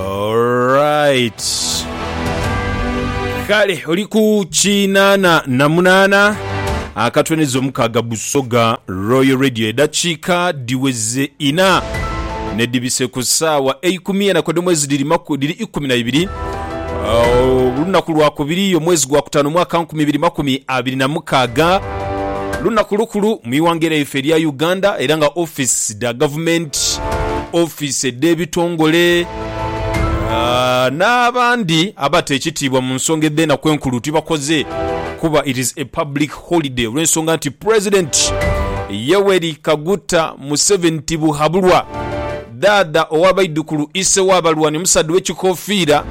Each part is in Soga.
Alright. Kale oli ku kinaana na munaana akatweneza omukaaga Busoga Royal Radio edakiika diweze ina nedibise ku saawa eikumi enaku ede mwezi diri maku diri ikumi na ibiri olunaku lwakubiri omwezi gwa kutaano omwaka nkumi ibiri makumi abiri na mukaaga Lunaku lukulu mu ighanga lyaife erya Uganda era nga office dha gavumenti, office edh'ebitongole n'abandi abata ekitiibwa mu nsonga edh'enaku enkulu tibakoze kuba it is a public holiday olw'ensonga nti President Yoweri Kaguta Museveni Tibuhaburwa, Dhaadha ow'abaidhukulu, Ise w'abalwani, omusaadha ow'ekikofiira,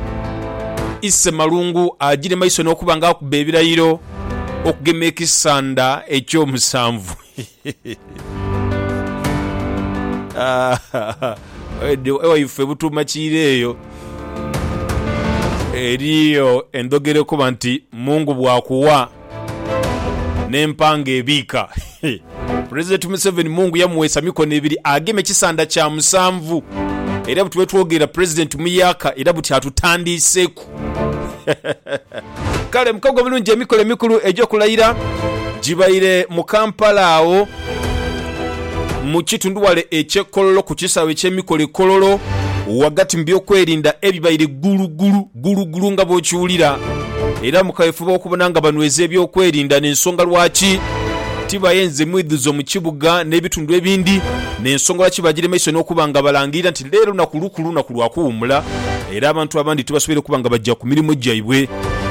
Ise Malungu agire maiso n'okuba nga akuba ebirayiro. okugema ekisanda eky'omusanvu. Ewaife e Butuuma Kiira eyo eriyo endhogera ekoba nti Mungu bwakuwa n'empanga ebiika. Pulezidenti Museveni Mungu yamuweesa mikono ebiri ageme kisanda kya musanvu era buti bwetwogerera Pulezidenti muyaaka era buti atutandiiseku. Kale mukago bulungi emikolo emikulu egy'okulayira gibaire mu Kampala agho mu kitundhuwale eky'e Kololo ku kisaawe eky'emikolo e Kololo ghagati mu byokwerinda ebibaire ggulugulu ggulugulu nga bwokiwulira era mu kaweefube w'okubona nga banweza ebyokwerinda n'ensonga lwaki tibayenze mwidhuzo mu kibuga n'ebitundu ebindi n'ensonga lwaki bagira maiso n'okuba nga balangirira nti Leero lunaku lukulu, lunaku lwa kuwummula era abantu abandi tibasoboire kuba nga baja ku mirimo gyaibwe.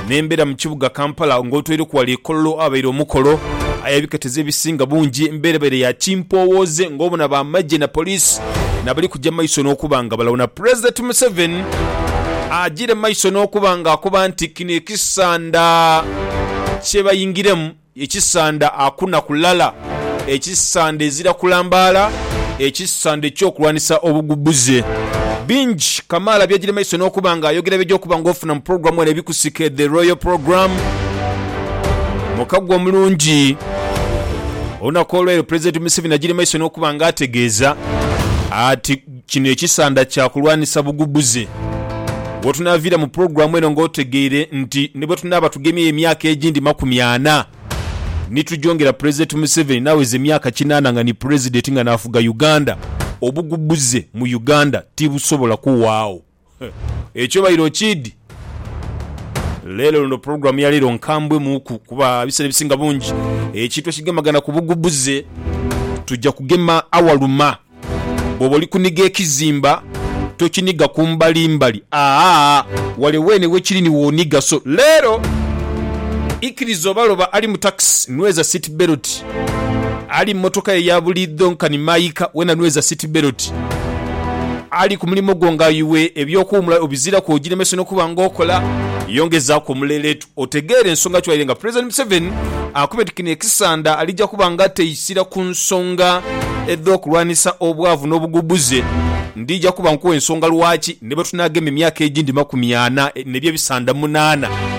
Nembera mu kibuga Kampala nga otweireku ghale e Kololo aghabaire omukolo aye ebiketeza ebisinga bungi embeera ebaire ya kimpoowooze nga obona ba magye na police nabali kuja maiso n'okuba nga balawuna Pulezidenti Museveni ajire maiso n'okuba nga akoba nti kino ekisanda kyebayingiremu Ekisanda akuna kulala, ekisanda ezira kulambaala, ekisanda eky'okulwanisa obugubbuze. Bingi kamaala by'agyire maiso n'okuba nga ayogera by'oja okuba nga ofuna mu pulogulaamu eno ebikusike The Royal Program. Mukago omulungi. Olunaku olw'eiro Pulezidenti Museveni agyire maiso n'okuba nga ategeeza ati, Kino ekisanda kya kulwanisa bugubuze. Wetunaaviira mu pulogulaamu eno nga otegeire nti ni bwe tunaaba tugemyeyo emyaka egindi makumi ana ni tugyongera Pulezidenti Museveni n'aweza emyaka kinaana nga ni Pulezidenti nga n'afuga Uganda, obugubuze mu Uganda tibusobola kuwaagho. Ekyo obaire okiidhi? Leero luno pulogulaamu ya leero nkambwe muuku kuba ebiseera ebisinga bungi ekintu ekigemagana ku bugubuze tuja kugema awaluma. Bwoba oli kuniga ekizimba tokiniga ku mbali mbali aa wale weene wekiri ni woniga so leero ikiriza oba loba ali mu takisi nweza seat belt. Ali mu motoka yo eya buliidho nkani maika, wena nweza siti beloti. Ali ku mulimo gwo nga iwe eby'okuwumula obiziraku ogilemese n'okuba nga okola. Yongezaaku omuleleetu otegeere ensonga ki waire nga Pulezidenti Museveni akubye nti kino ekisanda alija kuba nga ateisira ku nsonga edh'okulwanisa obwavu n'obugubbuze. Ndija kuba nkuwa ensonga lwaki ni bwe tunaagema emyaka egindi makumi ana ne bye bisanda munaana.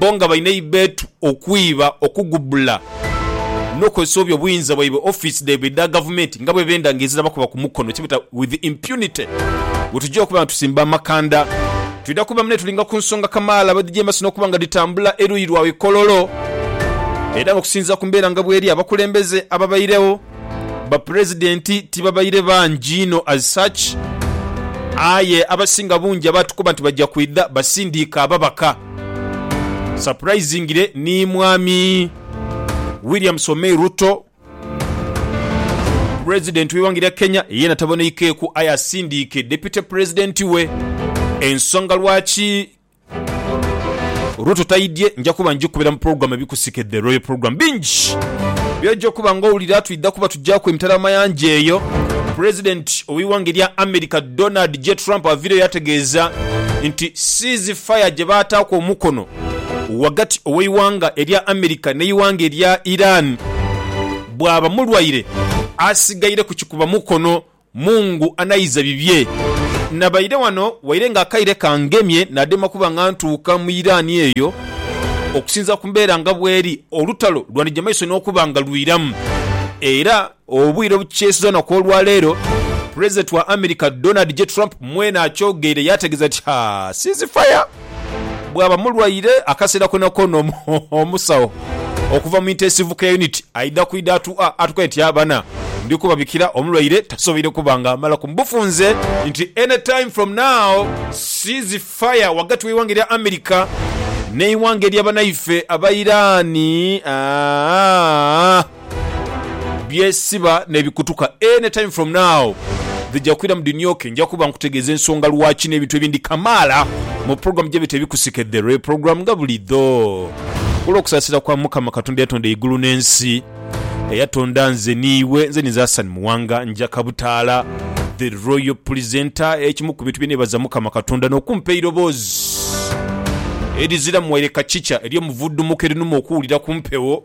bo nga balina eibeetu, okwiba, okugubula n'okukozesa obubi obuyinza bwaibwe ofiisi dhaibwe edha gavumenti nga bwebenda nga ezira bakuba ku mukono kyebeeta with impunity. Bwetugya okuba nga tusimba amakanda twidha kuba mune tulinga ku nsonga kamaala bwedhijeemesa n'okuba nga dhitambula eruuyi lwa we Kololo era nga okusinziira ku mbeera nga bweri abakulembeze ababairegho Bapulezidenti tibabaire bangi inho as such, aye abasinga bungi abaatukoba nti baja kwidha basindiike ababaka. Surprisingly ni Mwami William Somei Ruto, Pulezidenti w'eighanga erya Kenya yeena taboneikeeku aye asindiike Deputy Pulezidenti we. Ensonga lwaki Olwo totaidhye nja kuba ngikubira mu program ebikusike The Royal Program. Bingi byoja okuba nga owulira twidha kuba tugyaku emitala amayanja eyo. President oweighanga erya America Donald J Trump avireyo ategeeza nti cease fire gyebaataaku omukono wagati oweighanga erya America neighanga erya Iran bwaba mulwaire asigaire kukikuba mukono Mungu anaiza bibye. Nabaire wano waire nga akaire kangemye nadema kuba nga ntuuka mu Iran eyo okusinzira ku mbeera nga bweri olutalo lwandija maiso nokuba nga lwiramu era obwire obukyesiza olunaku olwaleero President wa America Donald J Trump mwene akyogeire yategeza nti haa ceasefire bwaba mulwaire akaseera konakoona omusawo okuva mu intensive care unit aidha kwidha atukoye nti abana ndi kubabikira omulwaire tasoboire kuba nga amalaku mu bufunze nti any time from now cease fire wagati w'eighanga erya America n'eighanga erya banaife Abairani. byesiba nebikutuka any time from now dhija kwiramu dhinyoke nja kuba nkutegeeza ensonga lwaki n'ebintu ebindi kamaala mu program gye bita ebikusike the real program nga bulidho kulw'okusaasira kwa Mukama Katonda eyatonda eigulu n'ensi eyatonda nze n'iwe nze ninze Hassan Muwanga njaka butaala the royal presenter ekimu ku bintu bye neebaza Mukama Katonda n'okumpa eiroboozi eriziramu waire kacica ery'omuvudumuko erinuma okuwulira ku mpewo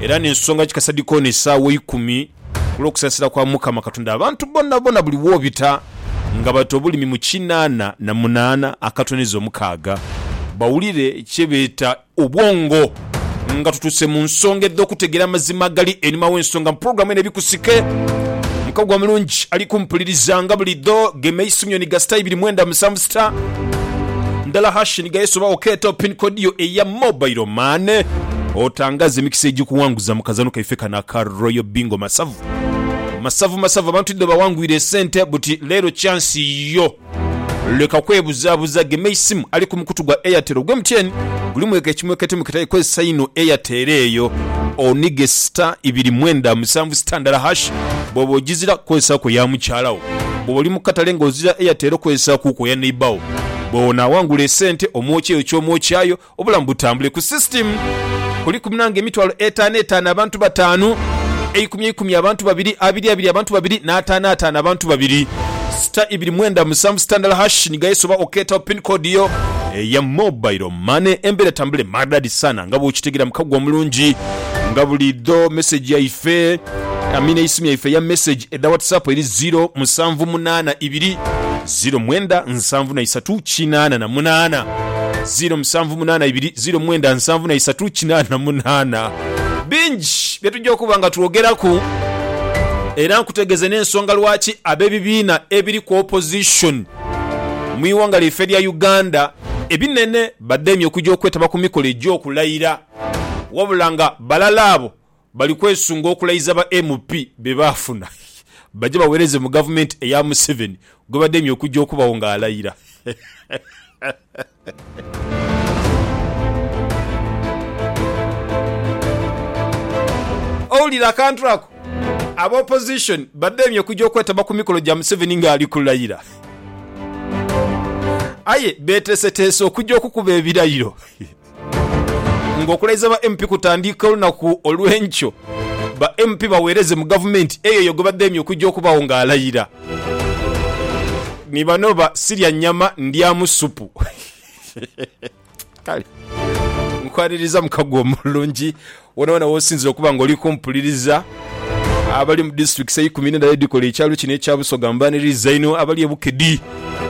Era n'ensonga ki kasadi koona esaawa eikumi, ku lw'okusaasira kwa Mukama Katonda abantu bonabona buli w'obita nga bata obulimi mu kinaana na munaana akatoneza omukaaga, bawulire kye beeta obwongo. Nga tutuuse mu nsonga edh'okutegeera amazima agali einhuma w'ensonga mu pulogulaamu eno Ebikusike, mukago omulungi ali kumpuliriza nga buli dho, gema eisubi nyoni ga sita ibiri mwenda musanvu. Star ndala hash ni gayesu oba okeeta pin code yo eya mobile money otangaze emikisa egyikuwanguza mu kazano kaife kano aka Royal Bingo masavu masavu masavu abantu idho bawangwire esente buti leero chance yo leka kwebuzabuza gema eisimu ali ku mukutu gwa Airtel ogwe MTN gulimu eka ekimwekete mukitaye kozesa ino Airtel eyo onige star ibiri mwenda musanvu star ndala hash bwoba ojizira kozesa ku eya mukyala wo. Bwoba oli mu katale nga ozira Airtel okozesaaku ku eya neighbour wo. Bwonaawangula esente omwokya eyo ky'omwokyaayo obulamu butambule. Ku system kuliku munange emitwalo etaano etaano abantu bataanu, eikumi eikumi abantu babiri, abiri abiri abantu babiri n'ataano ataano abantu babiri. Sita ibiri mwenda musanvu sita ndala hash ni gayesi oba okeetawo pin code yo eya mobile money. Embeera etambule maridadi saana nga bwokitegera mukago omulungi nga buliidho. Message yaife, I mean eisimu yaife eya message. Edha whatsapp eri ziro musanvu munana ibiri ziro mwenda nsanvu na isatu kinana na munana ziro musanvu munana ibiri ziro mwenda nsanvu na isatu kinana na munana bingi byetujja okuba nga twogeraku era nkutegeze nensonga lwaki abebibiina ebiri ku opposition mwiwanga lyaife erya Uganda ebinene bademye okuja okwetaba kumikolo egyokulayira wabula nga balala abo Bali kwesunga okulayiza ba MP be baafuna baje baweereze mu Gavumenti eya Museveni gwe bademye okujja okubagho ng'alayira. Owulira akantu ako? Aba Opposition bademye okujja okwetaba ku mikolo gya Museveni ng'ali kulayira. Aye beeteeseteese okujja okukuba ebirayiro. Nga okulaiza ba MP kutandiika olunaku olw'enkyo, ba MP baweereze mu gavumenti eyo eyo gwebadheemye okujja okubagho nga alayira. Ni bano ba Sirya nnyama ndyamu ssupu. Kale nkwaniriza mukago omulungi. Wonawona w'osinzira okuba nga oli kumpuliriza, abali mu disitulikisi eikumi n'endala edhikola ekyalo kino ekya Busoga mbaniriza inho, abali e Bukedi,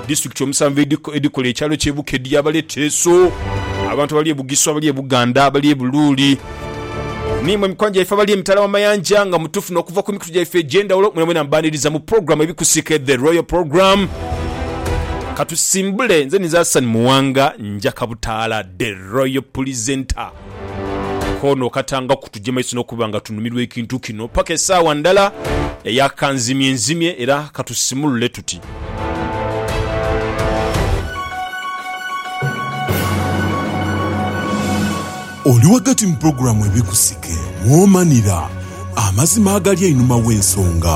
disitulikiti omusanvu edhikola ekyalo ky'e Bukedi, abali e Teso, abantu abali e Bugisu, abali e Buganda, abali e Buluuli, n'imwe mikwano gyaife abali emitala w'amayanja nga mutufuna okuva ku mikutu gyaife egy'endhawulo, mwenamwena mbaniriza mu pulogulaamu Ebikusike The Royal Program. Katusimbule, nze ninze Hassan Muwanga, njakabutaala The Royal Pulisenta. Koono okatanga kutugya maiso n'okuba nga tunumirwa ekintu kino paka esaawa ndala eya kanzimyenzimye era katusimulule tuti. Oli ghagati mu pulogulaamu Ebikusike mwomanhira amazima agali einhuma gh'ensonga.